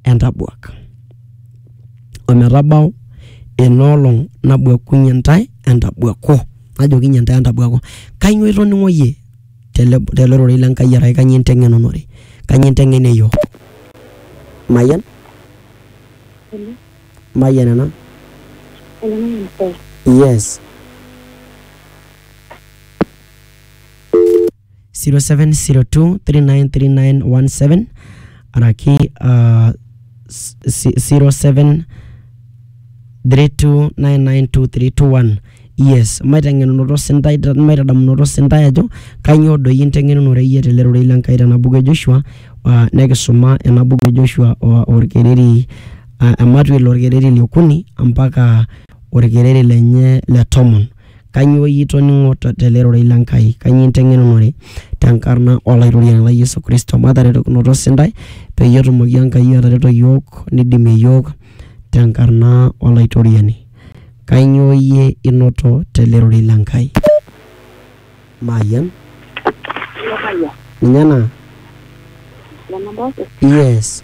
entabuak. O metabau ina olong nabuakunye intae entabuaku, najokinye intae entabuaku. Kainyoo itoning'o iyie tele, tele rorei le Nkai arashu kainyoo inteng'enunore, kainyoo inteng'ena iyiok? Mayian? Mayian ena? Yes. 0702 393917 araki uh, s- si- 07 3299231 yes maiteng'enunoto sintai maitadamunoto sintai ajo kainyoo doi inteng'enunore iyie tele rorei le Nkai tena buku e Joshua uh, nekisuma ena buku e Joshua uh, orkereri uh, ematwel orkereri le okuni mpaka orkereri lenye le tomon Kainyoo iyie itoning'o tele rorei le Nkai? Kainyoo inteng'enunore? Te nkarna o Laitoriani lai Yesu Kristo, mataretokinoto sintae peyie etumoki Enkai atareto iyiook neidimie iyiook te nkarna o Laitoriani. Kainyoo iyie inoto tele rorei le Nkai? Mayian? Ninye ena? Yes.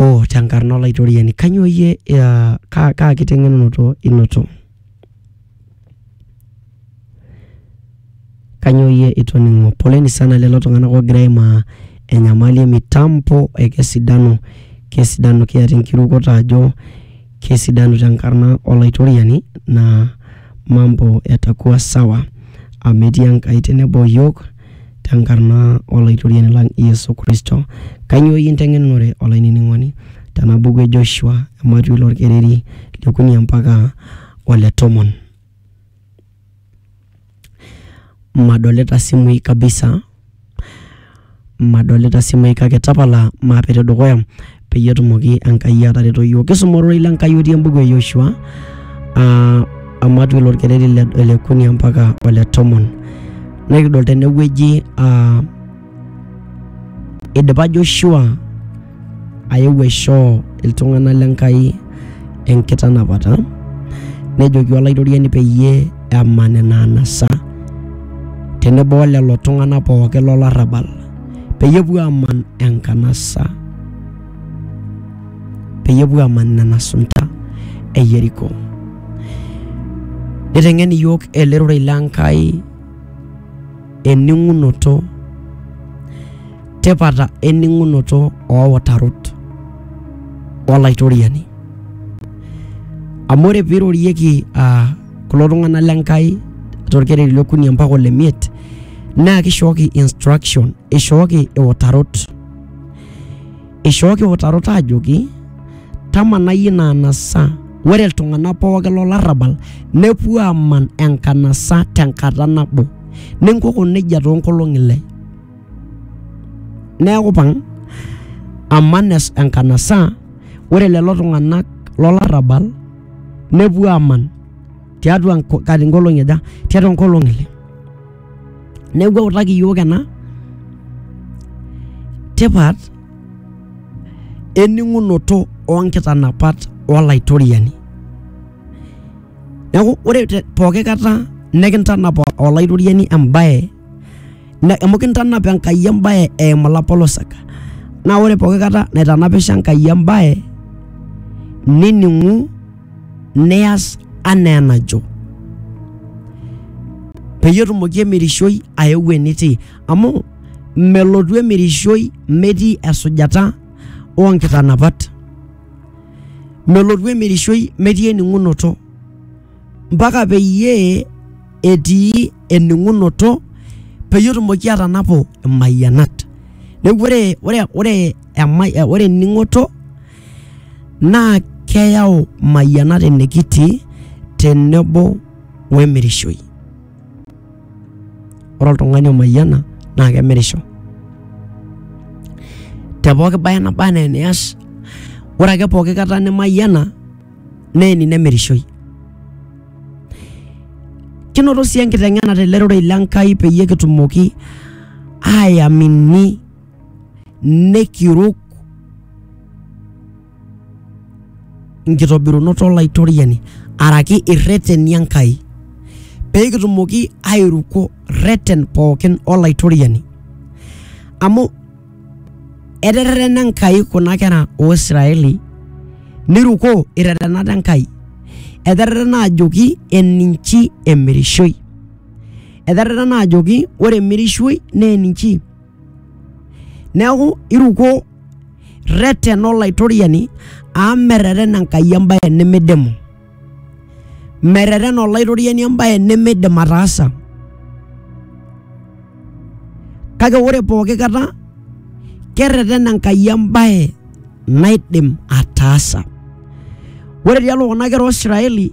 Oh, te nkarna Olaitoriani, kainyoo iyie aa kaa, kaa kiteng'enunoto inoto? Kainyoo iyie itoning'o? Poleni sana lelo tung'anak oogira aimaa enyamali e mitambo e kesidanu, kesidanu kiata enkirukoto ajo kesidanu te nkarna Olaitoriani naa mambo yatakuwa sawa amu etii Enkai tenebo o iyiook. tenkarna Olaitoriani lang Yesu Kristo. Kainyoo iyie inteng'enenore olainining'oni tena buku e Joshua ematui lolkereri liokuni ompaka ole tomon. Madolita simui kabisa, madolita simui kake tapala maape te dukuya. peyie etumoki Enkai atareto iyiook. Kisuma ororei le Enkai otii embuku e Yoshua aa amat ilo orkereri le ole kuni mpaka ole tomon. Nikidol tene wueji aa idipa Joshua ayeu aishoo iltung'anak le Enkai enkitanapata nejoki olaitoriani peyie eman ina anasa tenebo o lelo tung'anak pookin lo larrabal. peyie epuo aman enkanasa peyie epuo aman nena sunta e Yeriko. Niteng'en iyiook ele rorei le Nkai ening'unoto tipata ening'unoto ooutarot olaitoriani amu ore peirorieki uh, kulo tung'anak le Nkai torkereri le okuni mpaka ole miet naa kishooki instruction, ishooki iutarot. Ishooki iutarot aajoki tamanai ina anasa, ore iltung'anak pookin lo larrabal nepuo aaman enkanasa tenkata nabo. Ninkoko neija too nkolong'i ile. Neeku ipang' aman enkanasa, ore lelo tung'anak lo larrabal nepuo aman tiatua kati nkolong'i aja tiatua nkolong'i ile neeku eutaki iyiok ena tipat ening'unoto onkitanapat olaitoriani neeku ore te pooki kata nekintanapa olaitoriani embaye. amu kintanap Enkai embae eimu ilapolosak. Naa ore pooki kata naitanapisho Enkai embae nining'u nias anaa enajo peyie etumoki emirishoi aeu enitii amu melotu emirishoi metii esujata oo nkitanapat. Melotu emirishoi metii ening'unoto mpaka peyie etii ening'unoto peyie etumoki atanapu imayianat. Neeku ore ore ore emai ore ening'oto naa keyau imayianat enikitii tenebo we emirishoi. Ore oltung'ani omayiana naake emirisho te pooki baye naba naa enias, ore ake pooki kata nimayiana. neeni nemirishoi. Kinoto sii enkiteng'ena tele rorei le Nkai peyie kitumoki ayamini nikiruk nkitobirunot Olaitoriani araki irreteni Enkai pee kitumoki airuko rreten pookin Olaitoriani amu eterrena Enkai kuna kera oo Israeli nirukoo irretenat Enkai. Eterrena ajoki eninchi emirishoi. Eterrena ajoki ore emirishoi naa eninchi. Neeku iruko rretena Olaitoriani amu merretena Enkai embae nimidimu. Merretena olaitoriani embaye nemeidim ataasa. Kake ore pooki kata kerretena Enkai embaye naidim ataasa. Ore tialo kuna kera o Israeli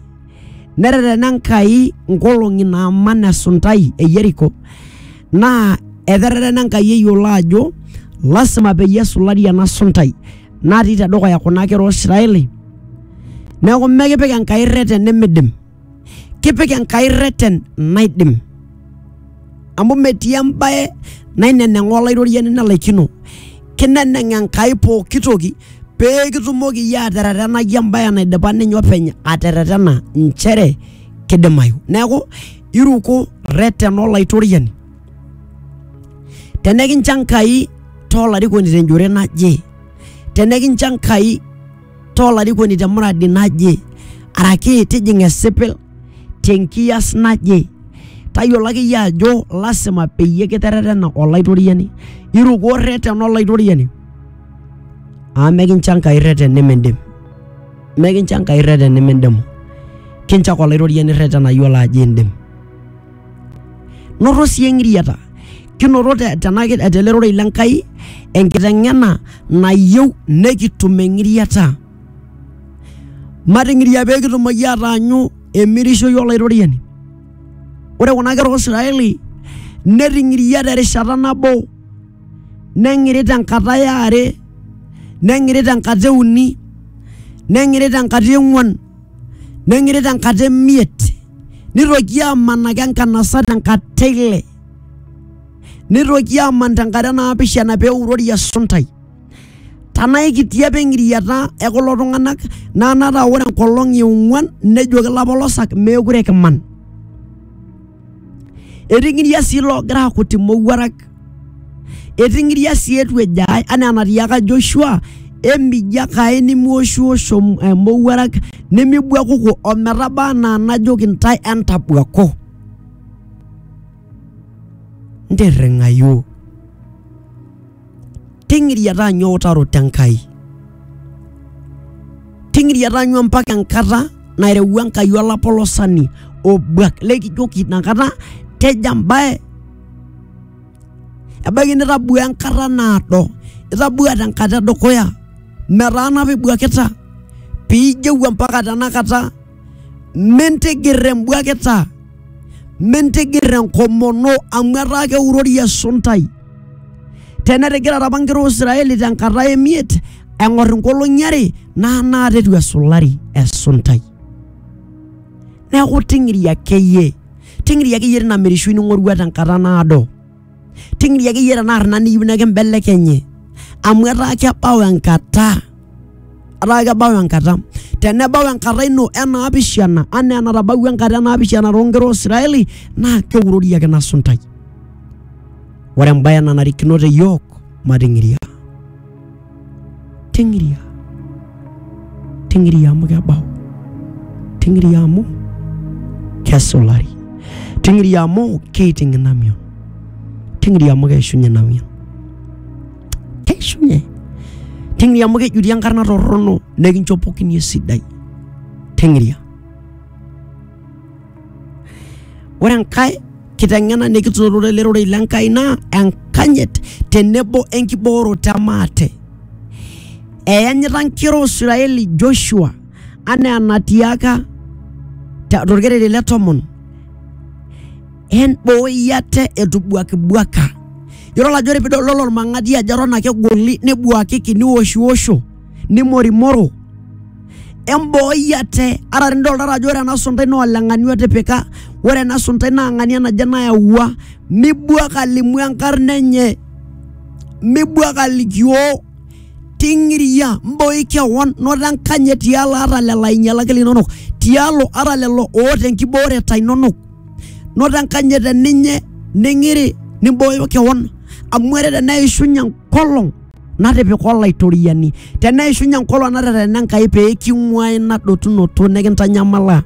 nerretena Enkai nkolong'i naaman esuntai e Yeriko naa eterrerena Enkai eyiolo ajo lasima peyie esulari ena suntai natii tedukuya kuna kera Israeli neeku mekipik Enkai irreten nimidim kipik Enkai irreten naidim amu metii embaye naineneng'aa olaitoriani nelaikino kineneng Enkai pooki toki pee kitumoki iyie aterretenai embaye naidipa ninye openy aterretena inchere kidimayu neeku iruko rretena Olaitoriani. Tenekincho Enkai toolarikoni tenjore naje, tenekincho Enkai toolarikoni te muradi naje, araki tijing' esipil tenkiyas naje, tayiolo ake iyie ajo lasima peyie kiterretena Olaitoriani. Iruko rretena Olaitoriani amu mekincho Enkai rreten nimindim, mekincho Enkai rreten nimindimu. kinchak olaitoriani irretenayu olo ajo indim noto sii eng'iriata kinoto te- tena ki- tele rorei le Nkai enkiteng'ena nayieu nekitum eng'iriata mating'iria pee kitumoki ataanyu emirishoi olaitoriani ore kuna kera Israeli neting'iria terishata nabo neng'iri tenkata e are neng'iri tenkata e uni neng'iri tenkata e ng'uan neng'iri tenkata e miet, nitoki amanaki enkanasa tenkata e ile, nitoki aman tenkata e naapishana pee eurori esuntai. Tanaa aikiti apa eng'iriata e kulo tung'anak naa ena taa ore enkolong' e ong'uan nejoki ilapolosak meekure kiman. eting'iria sii loogira akut imowuarak eting'iria sii etu ejo ae anaa enatiaka Joshua emijiak ae nimiwoshiwosh om- eh, mowuarak nimibuakuku ometaba anaa najoki ntae entabuaku ntirring'ayu ting'iriata aanyu eutaroto Enkai. Ting'iriata aanyu mpaka enkata nairewua Enkai olapolosani obuak lekijoki inakata tejo embae. Ebaiki nitabua enkata naado, itabua tenkata edukuya, metaana apa ibuakita piijeu ompaka tenakata mintigir embuakita mintigir enkomono amu etaa keurori esuntai tenetigira apa nkera o Israeli tenkata emiet eng'or inkolong'i are naa naata etu esulari esuntai neeku ting'iri akeyie ting'iri akeyie tina mirishui ning'orua tenkata naado ting'iria akeyie tenaa arna niyieu nekimbelekenye amu etaa kebau enkata etaa kebau enkata tenebau enkata ino enaapishana anaa enatabawua enkata enaapishana toonkera oisraeli naa keurori ake ina suntai ore embaye nanarikino te yiok mating'iria ting'iria ting'iria amu kebau ting'iria amu kesulari ting'iria amu keiting ina mion ting'iria amu keishunye ina mion keishunye ting'iria amu kejuri enkarna torrono nekinchopokini esidai ting'iria Ore enkae kiteng'ena nikitutore ele rorei le Nkai naa enkanyit tenebo enkibooroto e maate. Eyanyita nkera o Israeli Joshua anaa enatiaka tolkereri le tomon, embooi ate etubuakibuaka. Yiolo ake pee idol olmang'ati ajo eton ake egoli nebuakiki nioshiosho. nimorimoro embooi ate ara nidoltata ajo ore ena suntai naa oleng'ani otipika ore ena suntai naa ng'ania naje nayawua mibuak alimu enkarna enye mibuak alikioo ting'iria mbooi kewon noto enkanyit tialo ata lelo ainyialak linonok tialo ata lelo oota enkibooreta inonok noto enkanyit eninye ning'iri nimbooyo kewon amu ore teneishunye enkolong. natipika olaitoriani teneishunye enkolong naterena Enkai pee king'uaa ina dotunoto nikintanyamala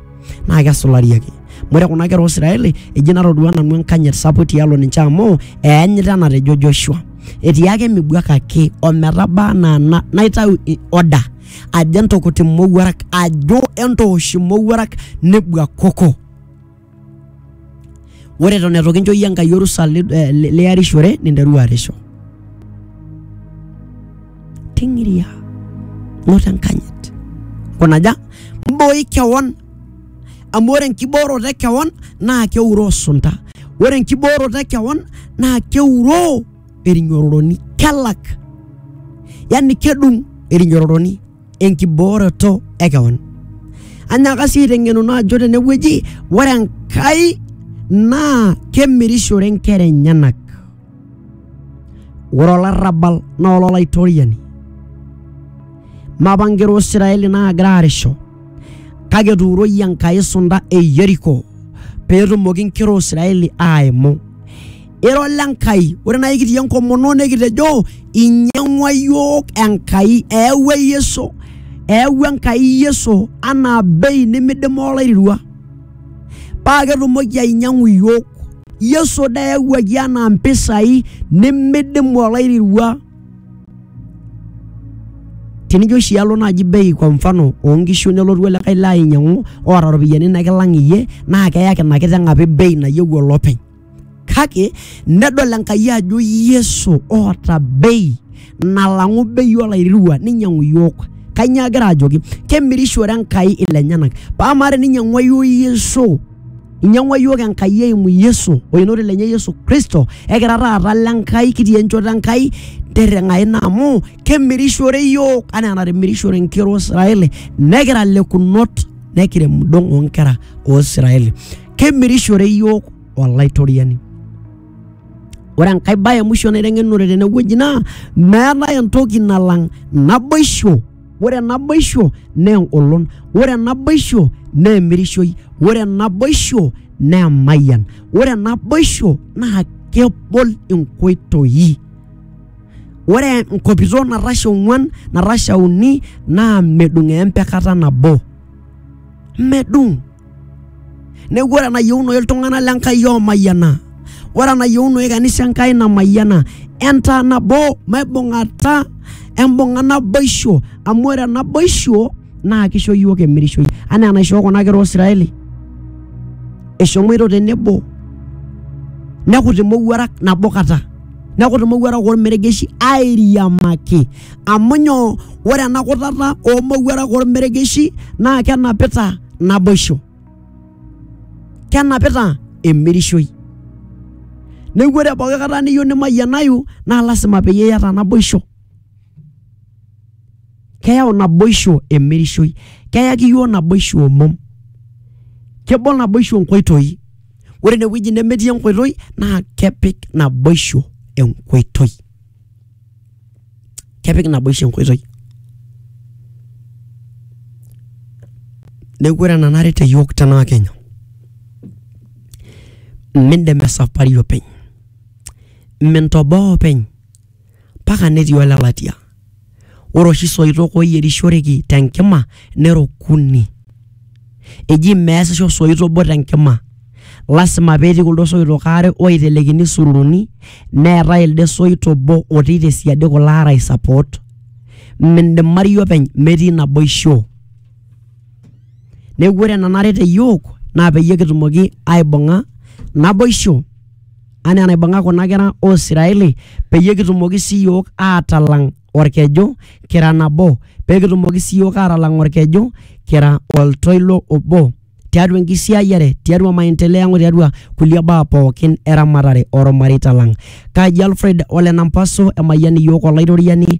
naa kesulari ake amu ore kuna kera Israeli eji natodua nanu enkanyit sapuk tialo ninche amu eanyita enatejo Joshua etii ake mibuakaki ometaba anaa na- naitau i- order ajo entukuti imowuarak ajo entoosh imowuarak nebuakoko Ore eton eitu kincho iyie Enkai orusa eh, liarishore ninteru arisho. Ting'iria noto enkanyit kunaja mbooi kewon amu ore enkibooroto e kewon naa keuroo sunta. Ore enkibooroto e kewon naa keuroo erinyororoni kelak, yani kedung erinyororoni. enkibooroto e kewan. Anyaaka sii aiteng'enuno ajo tenewueji ore Enkai naa kemirishore nkera enyenak. Ore olarrabal naa ololaitoriani. Mapa nkera o Israeli naagira aarisho kake etuuroyie Enkai sunta e Yeriko peetumoki nkera o Israeli aaimu. ira ole Nkai. Ore naa ikitii enkomono nikitejo inyang'ua yiok Enkai, eewua Yesu, eewua Enkai Yesu anaa bei nimidim oloirirua paa ketumoki ainyang'u yiok. Yesu dee eyawuaki anaa mpisai nimidimu oloirirua. Tenijo oshi alo naaji bei kwa mfano oonkishu nelotu olikae lee ainyang'u oota iropiyiani nikilang iyie naa keyaki ina kiteng apa bei nayieu olopeny. kake nedol Enkai ajo Yesu oota bei nalang'u bei olairriwa ninyang'u iyiook. Kainyoo egira ajoki? Kemirishore Enkai ilenyenak. Paa amaa teninyang'ua iyiook Yesu, inyang'ua iyiook Enkai eimu Yesu oenoti lenye Yesu Kristo, ekira taata ile Nkai, kitii enchoto Enkai, tirring'a ina amu kemirishore iyiook enaa enatimirishore inkera o Israeli nekira lekunot nekirem indong' oo nkera o Israeli. kemirishore iyiook olaitoriani. Ore enkae bae e mwisho naiteng'enure tene wueji naa meetae entoki nalang naboisho. Ore naboisho naa engolon, ore naboisho naa emirishoi, ore naboisho naa emayian, ore naboisho naa kebol inkoitoi. Ore enkopito natasha ong'uan, natasha uni naa medung eembe kata nabo. medung neeku ore enayieunoyu iltung'anak le Nkai oomayiana ore enayieunoyu kanisa Enkai namayiana entaa nabo maibung'ata embung'a naboisho amu ore naboisho naa kisho iyiook emirishoi anaa enaishoo kuna kera oosiraeli eshomoito tenebo nekut imowuarak nabo kata nekut imowuarak ormeregeshi airiamaki. amu nyoo ore ena kutata oo mowuarak oo lmeregeshi naa kenapita naboisho, kenapita emirishoi. Neaku ore pooki kata niyieu nimayianayu naa lazima peyie iyata naboisho. Keyau naboisho emirishoi, keyaki iyiok naboisho omom, kebol naboisho nkoitoi. Ore ine wueji nemetii enkoitoi naa kepik naboisho enkoitoi. kepik naboisho enkoitoi neeku ore enanare te yiok tena wakenya mindim esapari openy mintoboo openy mpaka netii olelatia Ore oshi soitok oyierishoreki te nkima nera okuni, eji meesisho osoit obo te nkima lazima pee etii kuldo soitok aare oitelekini isuluruni neetai elde soit obo otii te siadi kulo aare aisupport. Mindimari openy metii naboisho. Neeku ore enanare te iyiok naa peyie kitumoki aibung'a naboisho. anaa enaibung'a kuna kera o Israeli peyie kitumoki sii iyiok aatalang' olkeju kira nabo, pee kitumoki sii iyiok aatalang' olkeju kira oltoilo obo tiatua enkisiayiare, tiatua maendeleo ang' o tiatua kulie baa pooki e ramatare o lmareita lang'. Kaji Alfred o Lenampaso emayian iyiook Olaitoriani.